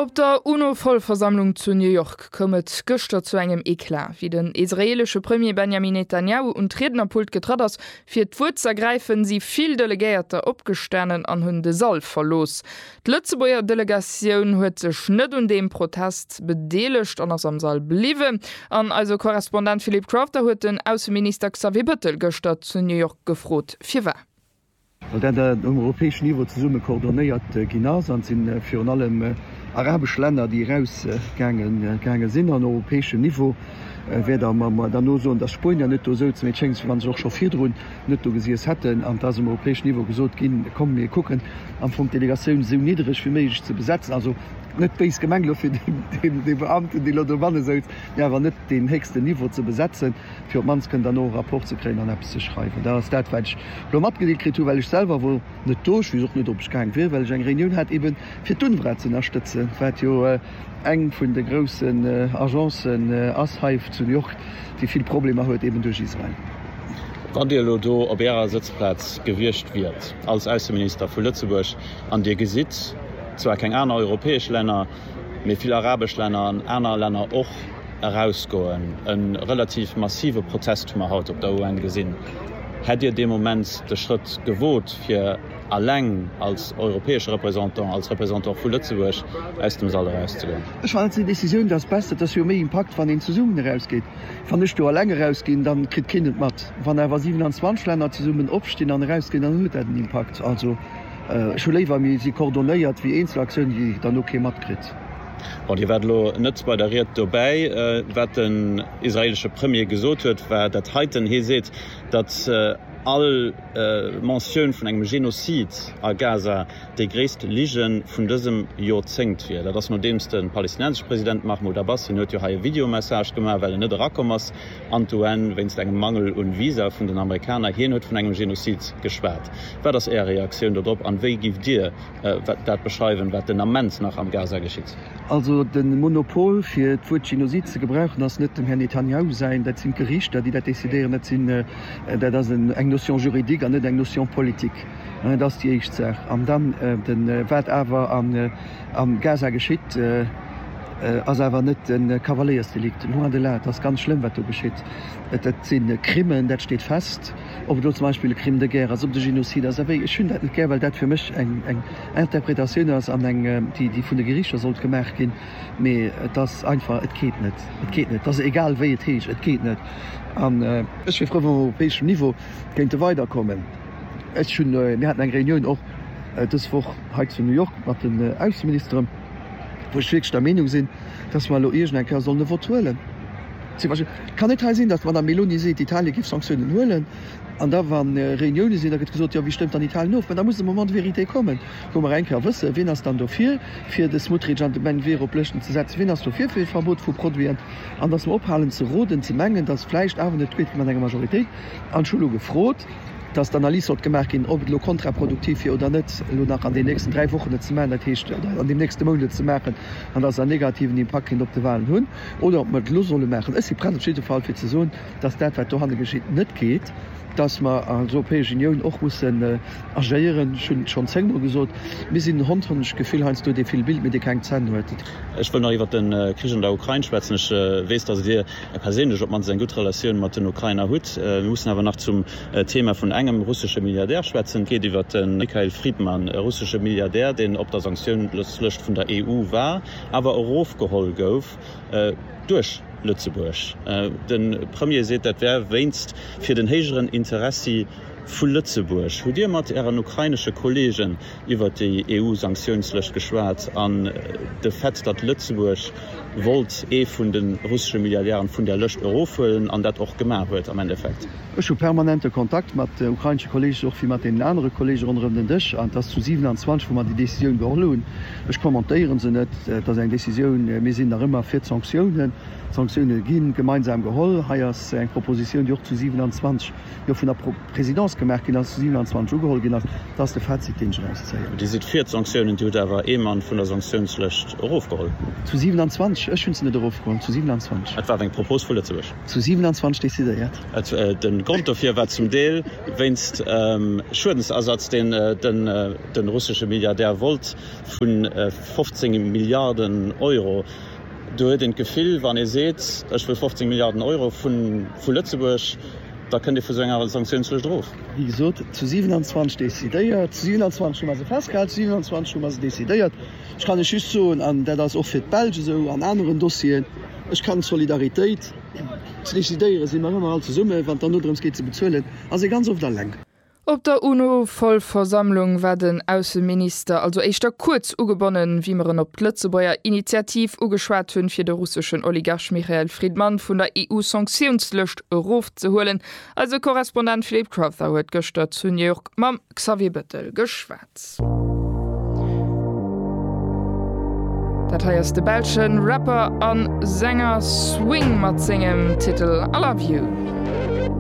Op der UNO-Vollversammlung zu New York koum et gëschter zu engem Eclat. Wéi den israeelesche Premier Benjamin Netanjahu un d'Riednerpult getratt ass, fir d'Wuert z'ergräifen, si vill Delegéierter opgestanen an hunn de Sall verlooss. D'Lëtzebuerger Delegatioun huet sech net un deem Protest bedeelegt an ass am Sall bliwwen. An eise Korrespondent Philippe Crafter huet den Ausseminister Xavier Bëttel gëschter zu New York gefrot, firwar. well dat um europäeschen Niveau zesumme coordonnéiert ginn ass, an et si virun allem arabesch Länner, déi erausgaange sinn an europäeschen Niveau wäert a mer dann nosoen, datt d'Spuenier net do souzen, mee et schéngt esou, wa se och scho virdrun net do gesiess hätten, an et ass um europäeschen Niveau gesot ginn, komm mir kucken am Fong d'Delegatioun esou niddreg wéi méiglech ze besetzen, also net béis gemengt elo fir dee Beamten, dee elo dobanne souz, mee awer net deen héchsten Niveau ze besetzen. fir op d'mannst kënnen dann och e Rapport ze kréien an eppes ze schreiwen. Dat ass dat, wat ech elo matgedeelt kritt hunn, well ech selwer wor net do. Ech weess och net, ob ech gaang wier, well ech eng Reunioun hat eebe fir d'UNRWA z'ënnerstëtzen, wat jo eng vun de groussen Agencen ass hei zu New York, déi vill Problemer huet eeben duerch Israel. Wann Dir elo do op Ärer Sëtzplaz gewiescht wiert als Ausseminister vu Lëtzebuerg an Dir gesitt zwar keng aner europäesch Länner, mee vill arabesch Länner an aner Länner och, erausgoen. E relativ massive Protest hu mer haut op der UN gesinn. Hätt Dir dee Moment de Schrëtt gewot, fir alleng als europäesche Représentant, als Représentant vu Lëtzebuerg aus dem Sall erauszegoen? Ech halen seng Décisioun, dat ass besser. Et ass jo méi Impakt, wann een zesummen erausgeet. Wann ech do alleng erausginn, da kritt keen et mat. Wann awer 27 Länner zesummen opstinn an erausginn, dann huet dat en Impakt. Also. Ech hu léiwer mir si coordonéiert wéi eenzel Aktiounen, déi dann no kee matkritt. Bon, Dir waart elo net bei der Ried dobäi. Wat den israeelesche Premier gesot huet, war dat heiten. Hie seet, datt all Mentioun vun engem Genozid a Gaza déi gréisst Lige vun dësem Jorzéngt wier. Dat ass nodeems de palestinensesche President Mahmoud Abbas, hien huet jo hei e Videomessage gemaach, well en net erakomm ass An d'UN wéinst engem Mangel un Visa vun den Amerikaner. Hien huet vun engem Genozid geschwat. Wat ass Äer Reaktioun dodrop an wéi giff Dir dat beschreiwen wat den Ament nach am Gaza geschitt? Also den Monopol fir d'Wuert Genozid ze gebrauchen ass net dem Här Netanjahu säin. Dat sinn d'Gerichter déi dat décidéieren. Dat sinn, dat ass eng Notion juridique an net eng Notion politique. Dat ass déi éischt Saach. An dann wat awer an. Am Gaza geschitt ass awer net e Kavaléiersdelikt, loin de là. Et ass ganz schlëmm, wat do geschitt. Et si Crimen, dat steet fest. Ob et elo zum Beispill e Crime de guerre ass, ob et e Genozid ass, abee, ech hunn dat net gär, well dat fir mech eng Interpretatioun ass, an eng, déi vun de Geriichter sollt gemaach ginn. Mee et ass einfach, et geet net. Et geet net. Et ass egal, wéi et heescht, et geet net. An ech wier frou, wa mer op europäeschem Niveau kéinte weiderkommen. Ech hunn, mir haten eng Reunioun och dës Woch hei zu New York mat den Ausseministeren, wou ech wierklech der Meenung sinn, dass mer elo iergend eng Kéier sollen e Vote huelen. Zum Beispill, et kann net hei sinn, dass d'Madame Meloni seet, Italien géif Sanktiounen huelen, an da wa Reuniounen sinn, da gëtt gesot, jo, wie stëmmt dann Italien of? Mä da muss de Moment de vérité kommen, wou mer eng Kéier wëssen, wien ass dann dofir, fir de Smotrich an de Menvir op Lëschten ze setzen, wien ass dofir fir e Verbot vu Produiten, an dass mer ophalen ze roden, ze mengen, dass vläicht awer net d'Mehrheet vun engem Majoritéit, an ech hu elo gefrot, dass d'Analys sollt gemaach ginn, ob et elo kontraproduktiv wier oder net, elo nach an den nächsten dräi Wochen et ze maachen, dat heescht an deem nächste Mount et ze maachen, an dass et en negativen Impakt kéint op de Wahlen hunn, oder ob mer et elo solle maachen. Ech si prett op jidde Fall, fir ze soen, dass dat, wat dohanne geschitt, net geet, dass mer als Europäesch Unioun och mussen agéieren. Ech hunn et schonn zéngmol gesot, Mir sinn en Hond, hunn ech d'Gefill, heiansdo, dee vill billt, mee dee keng Zänn huet. Ech wëll nach iwwert de Krich an der Ukrain schwätzen. Ech weess, dass et Dir Ech perséinlech op mannst eng gutt Relatioun mat den Ukrainer hutt. Mir mussen awer nach zum Thema vun engem russesche Milliardär schwätzen. Et geet iwwert de Mikhail Fridman, e russesche Milliardär, deen op der Sanktiounslëscht vun der EU war, awer erofgeholl gouf duerch Lëtzebuerg. De Premier seet, dat wär wéinst fir den héijeren Interessi vu Lëtzebuerg. Hutt Dir mat Ären ukrainesche Kollegen iwwert déi EU-Sanktiounslëscht geschwat an de Fait, datt Lëtzebuerg wollt ee vun de russesche Milliardären vun där Lëscht erofhuelen an dat och gemaach huet am Endeffekt. Ech hu permanente Kontakt mat ukrainesche Kolleege souch wéi mat deenen anere Kolleege ronderëm den Dësch an et ass zu 27 wou mer déi Decisioun geholl hunn. Ech kommentéiere se net. Et ass eng Decisioun. Mir sinn nach ëmmer fir d'Sanktiounen. D'Sanktioune gi gemeinsam geholl. Hei ass eng Propositioun, déi och zu 27 jo vun der Présidence gemaach ginn ass, zu 27 ugeholl ginn ass. Dat ass de Fazit, deen ech eraus zéien. Dir sidd fir d'Sanktiounen. Dir hutt awer ee Mann vun der Sanktiounslëscht erofgeholl. Zu 27? Ech hunn se net erofgeholl. Zu 27. Et war eng Propos vu Lëtzebuerg. Zu 27 decidéiert. De Grond dofir war zum Deel wéinst Schuedensersatz, deen de russesche Milliardär wollt, vu 15 Milliarden Euro. Do huet een d'Gefill, wann ee seet, ech wëll 15 Milliarden Euro vu Lëtzebuerg, da kënnt ee vu sou enger Sanktiounslëscht erof. Wéi gesot, zu 27 decidéiert, zu 27 hu mer se festgehalen, zu 27 hu mer se decidéiert. Ech kann Iech just soen, an dat ass och fir d'Belsch esou an aneren Dossieren, ech kann d'Solidaritéit, ze decidéiere si mer ëmmer all zesummen, wann et dann dodrëms geet, ze bezuelen, ass ee ganz oft eleng. Op der UNO-Vollversammlung war den Ausseminister also éischter kuerz ugebonnen, wéi mer en op d'Lëtzebuerger Initiativ ugeschwat hunn, fir de russeschen Oligarch Michael Fridman vun der EU-Sanktiounslëscht erofzehuelen. Eise Korrespondent Philippe Crowther huet gëschter zu New York mam Xavier Bettel geschwat. Dat hei ass de belsche Rapper a Sänger Swing mat sengem Titel I Love You.